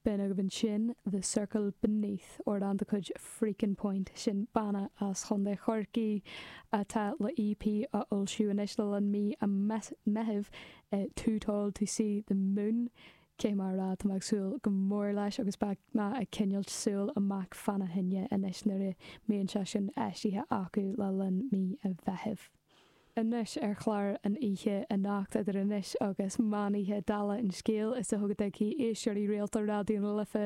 B'in agaibh ansin The Circle Beneath, amhrán de chuid Freakin Point, sin banna as Chontae Chorcaí atá le EP a fhoilsiú anois le linn mí an Mheithimh, Too Tall to See the Moon, Caithfidh mé a rá, tá mé ag súil go mór leis agus beidh mé ag coinneáilt súil amach fana choinne anois nuair a mbíonn sé sin eisithe acu le linn mí an Mheithimh. Anois ar chlár an oíche anocht, idir anois agus meán oíche, dála an scéil, is dócha go dtuigfidh éisteoirí rialta Raidió na Life,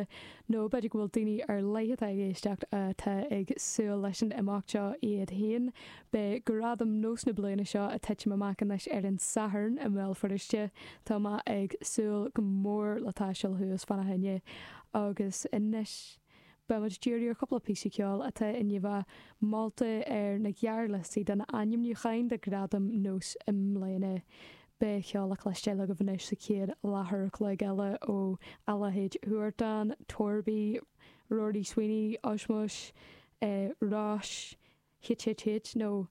nó b'fhéidir go bhfuil daoine ar leith atá ag éisteacht atá ag súil leis an imeacht seo iad féin, beidh Gradaim NÓS na bliana seo ag titim amach anois ar an Satharn i mBéal Feirste. Tá mé ag súil go mór le taisteal thuas fána choinne agus anois. Beidh muid ag díriú ar chúpla píosa ceoil atá i ndiaidh a molta ar na gearrliostaí de na hainmniúcháin do Ghradaim NÓS i mbliana. Beidh ceol le cloisteáil agaibh anois sa chéad leathuair an chloig eile ó Allied Huartan, Torby, Rory Sweeney, Osmose, Róis, HHH nó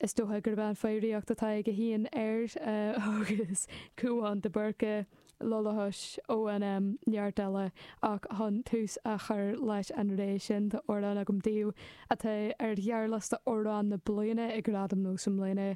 Is dócha gurb é an fhoghraíocht atá aige féin air agus Cúán de Burca, Lollihosh, ON M neart eile ach chun tús a chur leis an réimse sin tá amhrán agam daoibh atá ar ghearrliosta Amhrán na Bliana ag Gradaim NÓS i mbliana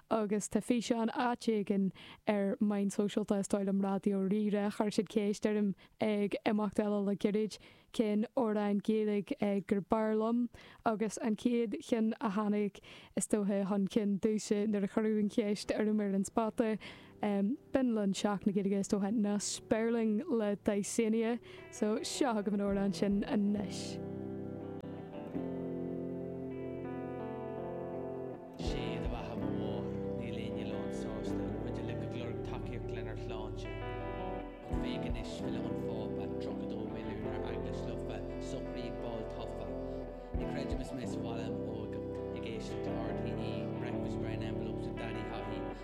agus tá físeán áit éigin ar na meáin shóisialta is dóigh liom Raidió Rí-Rá chuir siad ceist orm ag imeacht eile le gairid cén amhrán Gaeilge ab fhearr liom agus an chéad cheann a tháinig, is dóiche, chun cinn domhsa nuair a cuireadh an cheist orm ar an spota, b'in le linn Seachtain na Gaeilge, is dóiche, ná Spéirling le Dysania. So, seo chugaibh an amhrán sin anois. Sé do bheatha a Mhamó, níl éinne lán sásta, muid uilig ag lorg tacaíocht lenár shláinte. An féidir anois filleadh an Phápa, 32 milliún ar Eaglais lofa, sochraíd ball tofa. Ní chreidim is mé sa bhaile im óige ag éisteacht le RTÉ, breakfast brown envelopes with Daidí Hothy.